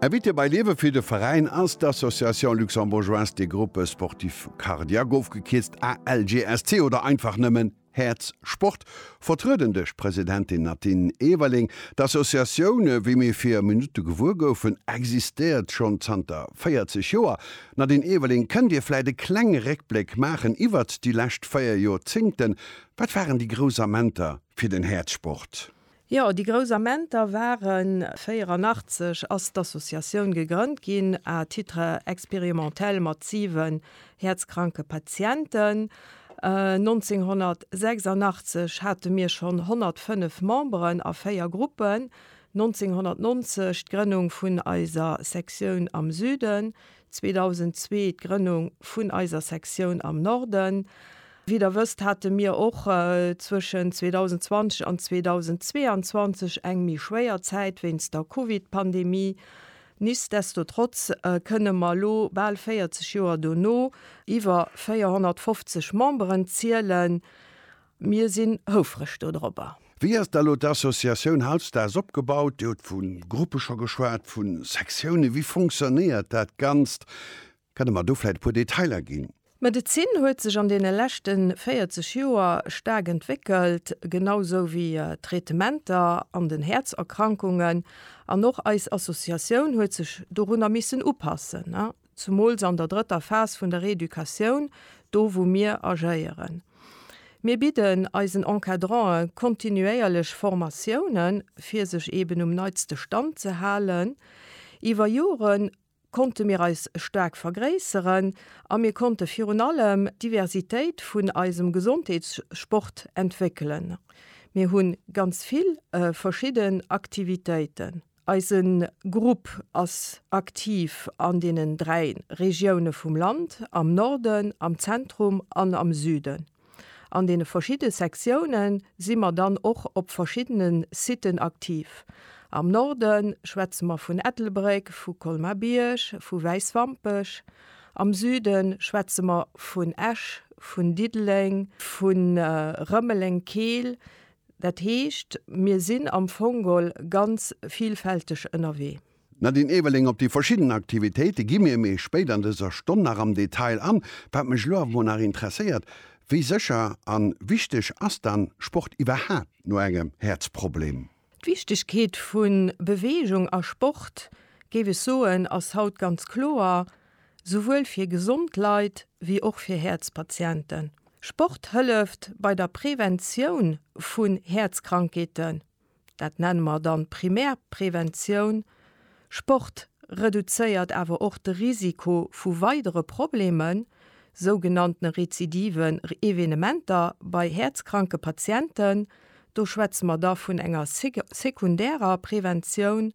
Invité bei Liewe fir de Veräin ass d'Association Luxembourgeoise des Groupes Sportifs Cardiaques, ofgekierzt ALGSC oder einfach nëmmen Häerz Sport, vertrueden duerch d'Presidentin Nadine Everling. D'Associatioun, wéi mir vir Minutte gewuer goufen, existéiert schonn zanter 40 Joer. Nadine Everling, kënnt Dir vläit e klenge Réckbléck maachen iwwert déi lescht véier Jorzéngten? Wat waren déi grouss Amenter fir den Häerzsport? Jo, déi grouss Amenter waren. 84 ass d'Associatioun gegrënnt ginn à titre expérimentel mat siwen häerzkranke Patienten. 1986 hate mir schonn 105 Memberen a véier Gruppen, 1990 d'Grënnung vun eiser Sektioun am Süden, 2002 d'Grënnung vun eiser Sektioun am Norden. Wéi der wësst, hate mir och zwëschen 2020 an 2022 eng méi schwéier Zäit wéinst der Covid-Pandemie. Nichtsdestotrotz kënne mer elo, bal 40 Joer dono, iwwer 450 Memberen zielen. Mir sinn houfreg dodropper. Wéi ass da elo d'Associatioun hautstags opgebaut? Dir hutt vu Gruppe scho geschwat, vu Sektiounen. Wéi fonctionnéiert dat Ganzt? Kann Der mer do vläit e puer Detailer ginn? D'Medezin huet sech an deene leschte 40 Joer staark entwéckelt, genau sou wéi d'Traitementer an den Häerzerkrankungen. An och eis Associatioun huet sech dorunner missen upassen. Zumools an der drëtter Phas vun der Reeducatioun, do wou mir agéieren. Mir bidden eisen Encadrantë kontinuéierlech Formatiounen, fir sech eben um neitste Stand ze halen. Iwwer Jore konnte mir eis staark vergréisseren a mir konnte virun allem d'Diversitéit vun eisem Gesondheetssport entwéckelen. Mir hu ganz vill verschidden Aktivitéiten. Eise Grupp ass aktiv an deenen dräi Regioune vum Land, am Norden, am Zentrum an am Süden. An deene verschidde Sektioune si mer dann och op verschiddene Siten aktiv. Am Norde schwätze mer vun Ettelbréck, vu Colmar-Bierg, vu Wäiswampech. Am Süde schwätze mer vun Esch, vun Diddeleng, vu Rëmeleng-Keel, Dat heescht, mir sinn am Fongol ganz vielfälteg ënnerwee. D'Nadine Ewerling, Op déi verschidden Aktivitéite gi mir méi spéit an dëser Stonn nach am Detail an. Wat mech elo awer mol nach interesséiert, Wéi sécher a wichteg ass dann Sport iwwerhaapt no engem Häerzproblem? D'Wichtegkeet vu Beweegung a Sport, géif ech soen, ass haut ganz kloer. souwuel fir gesond Leit wéi och fir Häerzpatienten. Sport hëlleft bei der Preventioun vun Häerzkrankheeten, dat nenne mer dann Primärpreventioun. Sport reduzéiert awer och de Risiko vu weidere Problemen, sougenannten rezidiven Evenementer bei häerzkranke Patienten. Do schwätze mer da vun enger sekundärer Preventioun.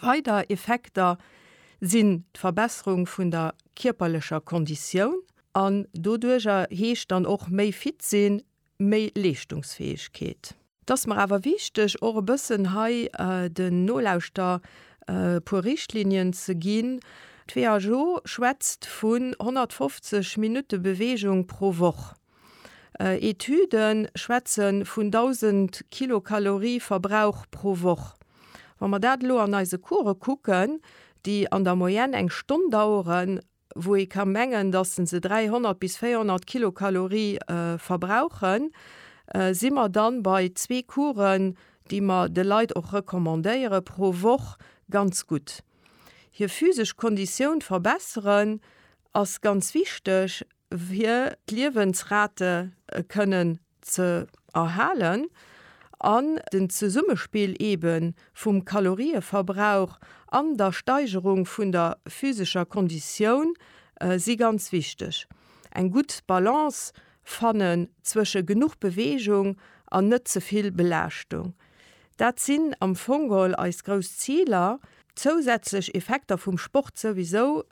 Weider Effekter sinn d'Verbesserung vun der kierperlecher Konditioun an doduerjer heescht dann och méi fit sinn, méi Leeschtungsfäegkeet. Et ass mer awer wichteg och e bëssen hei den Nolauschter e puer Richtlinien ze ginn. D'WHO schwätzt vun 150 Minutte Beweegung pro Woch. Etüde schwätze vun 1.000 Kilokalorie Verbrauch pro Woch. Wa mer dat elo an eise Course kucken, déi an der Moyenne eng Stonn daueren, wou ee ka mengen, datt se 300 bis 400 Kilokalorie verbrauchen, si mer da bei zwee Coursen, déi mer de Leit och recommandéiere pro Woch, ganz gutt. Hir physesch Konditioun verbesseren ass ganz wichteg. fir d'Liewensrate kënnen ze erhalen an den Zesummespill ebe vum Kalorieverbrauch an der Steigerung vun der physescher Konditioun si ganz wichteg. Eng gutt Balance fannen zwësche genuch Beweegung an net ze vill Belaaschtung, dat sinn am Fong geholl eis grouss Ziler. Zousätzlech Effekter vum Sport souwisou.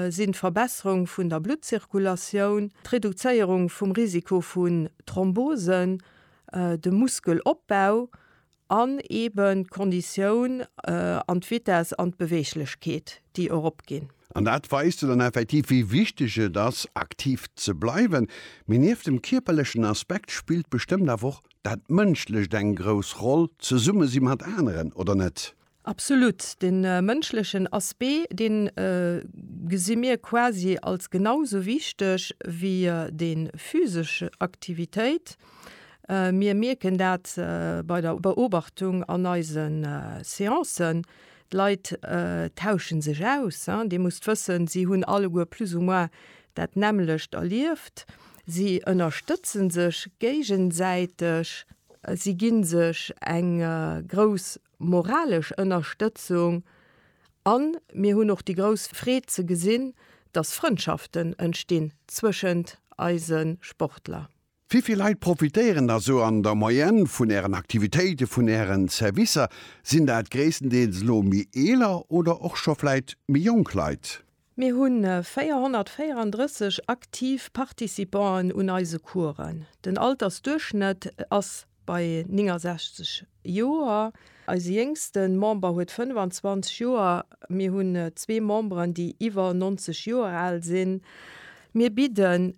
sinn d'Verbesserung vun der Bluttzirkulatioun, d'Reduzéierung vum Risiko vun Thrombosen, de Muskelopbau an eeben d'Konditioun an d'Vitess an d'Beweeglechkeet, déi eropginn. An dat weist jo dann effektiv, wéi wichteg et ass, aktiv ze bleiwen. Mee nieft dem kierperlechen Aspekt spillt bestëmmt awer och dat Mënschlecht eng grouss Roll, d'Zesummesi mat aneren, oder net? Absolut. De mënschlechen Aspect, dee gesi mir quasi als genau sou wichteg wéi déi physesch Aktivitéit. Mir mierken dat bei der Beobachtung an eise Seancen, d'Leit tausche sech aus. Dir musst wëssen, si hunn alleguer plus ou moins dat nämmlecht erlieft. Si ënnerstëtze sech géigesäiteg, si gi sech eng grouss moralesch Ënnerstëtzung a mir hunn och déi grouss Freed ze gesinn, dass Frëndschaften entstinn zwëschent eise Sportler. Wéivill Leit profitéieren da sou an der Moyenne vun Ären Aktivitéiten, vun Ären Servicer? Sinn dat gréisstendeels elo méi eeler oder och scho vläit méi jonk Leit? Mir hu 434 aktiv Participanten un eise Coursen. Den Altersduerchschnëtt ass bei 69 Joer. Eise jéngste Member huet 25 Joer. Mir hunn zwee Memberen, déi iwwer 90 Joer al sinn. Mir bidden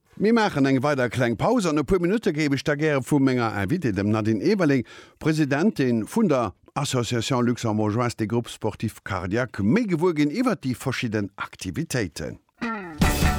Mir maachen eng weider kleng Paus. An e puer Minutte géif ech da gäre vu menger Invitée, dem Nadine Eberling, Presidentin vun der Association Luxembourgeoise des Groupes Sportifs Cardiaques, méi gewuer ginn iwwert déi verschidden Aktivitéiten.